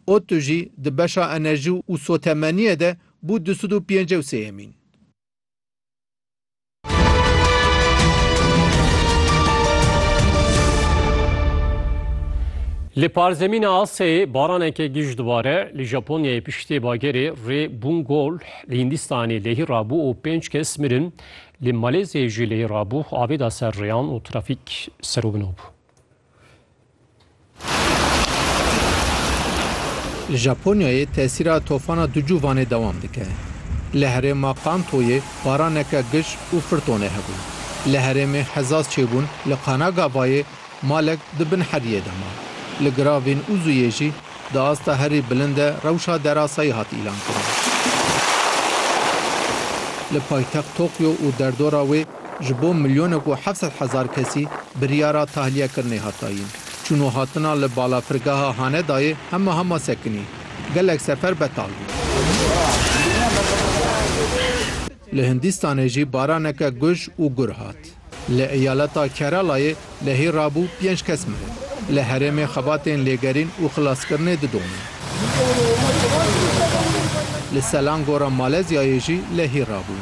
ODTU jî di beşa enerjî û sotemeniyê de bû du sed û pêncî û sêyemîn. Li parzemîna Asyayê baraneke giş dibare, li Japonyayê piştê bagerê rê Bungol li Hindistanê lehî rabû û pênc kes mirin, li Maleziyayê jî lehî rabû, avêda ser rêyan û trafîk serûbino bû. Li Japonyayê tesîra tofana Ducu Vanê dewam dike. Li herêma Kantoyê baraneke gij û firtonê hebû. Li herêmê Hezaz çêbûn li Kanagavayê malek di bin heriyê de ma. Li giravên Uzuyê jî di asta herî bilind de rewşa derasayî hat îlankirin. Li paytext Tokyo û derdora wê Ji bo milyonek û heft sed hezar kesî biryara tahliyekirinê hat dayîn. Çûn û hatina li balafirgeha Hanedayê hema hema sekinî. Gelek sefer betal bû. Li Hindîstanê jî baraneke guj û gur hat. Li eyaleta Keralayê Lehî rabû pênc kes mirin. Li herêmê xebatên lêgerîn û xilaskirinê didomin. Li Selangora Malezyayê jî lehî rabû.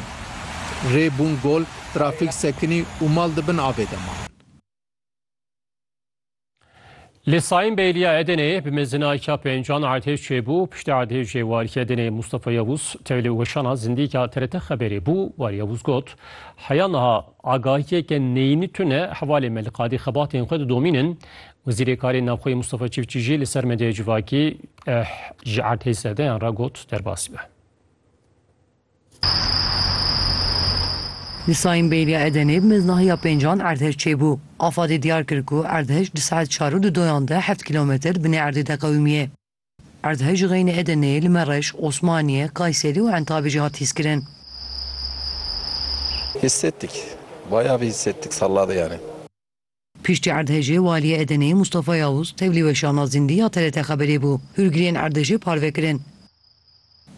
Rê bûn gol, trafîk sekinî û mal di bin avê de man. Li Saim Beyliya Edeneyê bi mezina ka pêncan erdhej çêbû, piştî erdhejê warî Edeneyê Mustafa Yewûz tevlî weşana zindîka TRT Xeberê bû, warî Yewûz got, Heya niha agahiyeke neyînî tune hevalê me li qadî xebatên xwe didomînin. Wezîrê Karên Navxweyî Mustafa Çiftçî jî li ser medyaya civakî ji erdhej zerdeyan re got derbasî be. Di Sayîn Bêrîya Edenê bi mêznahiya pêncan erdhej çêbû. Afadê diyar kir ku erdhej di saet çar û di doyan de heft kîlometr binê erdê de qewimîyê. Erdhej ji xeynê Edeneyê li Mereş, Osmaniye, Kayserî û Entabê jî hat hîskirin. Hissettik. Bayav hissettik salladê yani. Piştî erdhejê Waliyê Edeneyê Mustafa Yavuz tevlî weşana zindî ya TRT Xeberê bû. Hûrgiriyên erdhejê parve kirin.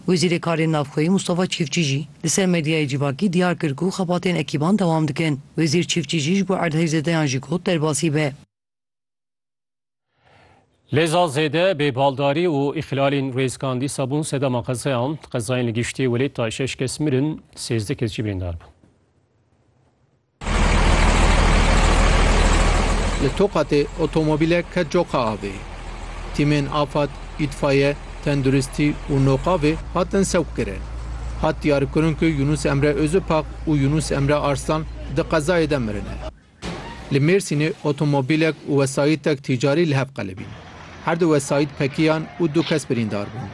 Wezîrê Karên Navxweyî Mustafa Çîftçî jî li ser medyayê civakî diyar kir ku xebatên ekîban dewam dikin. Wezîr Çîftçî jî ji bo erdhejzedeyan jî got derbasî be. Lêza zêde bêbaldarî û îxlalên rêzkan dîsa bûn sedema qezeyan. Qezayên li giştî welê tay şeş kes mirin, sêzdeh kes jî birîndar bûn. Li Tokatê otomobîlek ket coka avê. Tîmên afad, îtfaye, tenduristî û noqavê hatin sewqkirin. Hat diyarkirin ku Yunus Emre Ozupak û Yunus Emre Arslan di qezayê de mirine. Li Mêrsînê otomobîlek û wesayîtek tîcarî li hev qelibîn. Her du wesayît pekiyan û du kes birîndar bûn.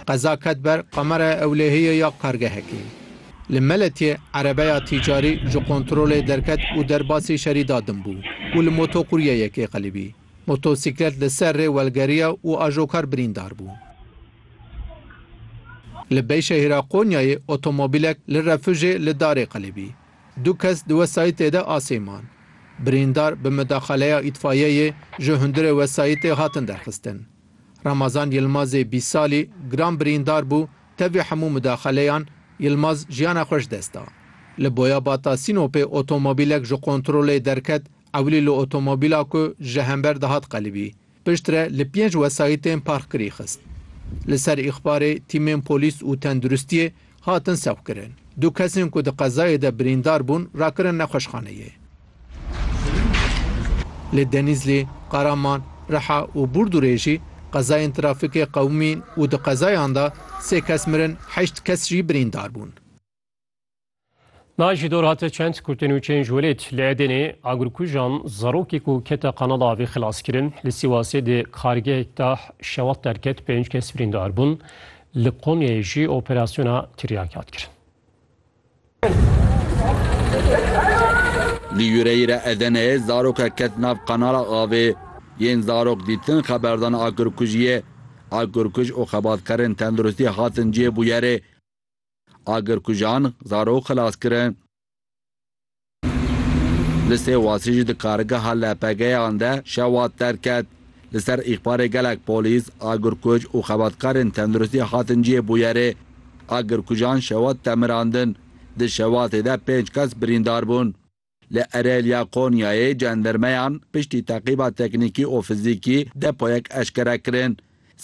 Qeza ket ber Qameraya Ewlehiyê ya kargehekê. Li Meletiyê erebeya tîcarî ji kontrolê derket û derbasî şerî da din bû û li motokuryeyekê qelibî. Motosîklet li ser rê welgeriya û ajokar birîndar bû. Li Beyşehîra Qonyayê otomobîlek li refûjê li darê qelibî. Du kes di wesayîtê de asê man. Birîndar bi midaxaleya îtfayeyê ji hundirê wesayîtê hatin derxistin. Ramazan Yilmazê bîst salî giran birîndar bû, tevî hemû midaxaleyan Yilmaz jiyana xwe ji dest da. Li Boyabata Sînopê otomobîlek ji kontrolê derket, ewlî li otomobîla ku ji hember dihat qelibî, Piştre li pênc wesayîtên parkirî xist. Li ser îxbarê tîmên polîs û tenduristiyê hatin sewqkirin. Du kesên ku di qezayê de birîndar bûn rakirin nexweşxaneyê. Li Denîzlî, Qaraman, Riha û Burdurê jî qezayên trafîkê qewimîn û di qezayan de sê kes mirin heşt kes jî birîndar bûn. Naj ji dor hate çend kurtên û çênj welêt li Edenê agirkujan zarokê ku kete qanala avê xilas kirin. Li Sîwasê di kargehek de şewat derket pênc kes birîndar bûn. Li Konyayê jî operasyona tiryak hat kirin. Li Yûreyîre Edeneyê zarokek ket nav qanala avê. Yên zarok dîtin xeberdana agirkujiyê. Agirkuj û xebatkarên tenduristî hatin cihê bûyerê. agirkujan zarok xilas kirin. Li Sêwasê jî di kargeha LPG'yan de şewat derket. Li ser îxbarê gelek polîs, agirkuj û xebatkarên tenduristî hatin cihê bûyerê. Agirkujan şewat de mirandin. Di şewatê de pênc kes birîndar bûn. Li Erelya Konyayê cendirmeyan piştî teqîba teknîkî û fizîkî depoyek eşkere kirin.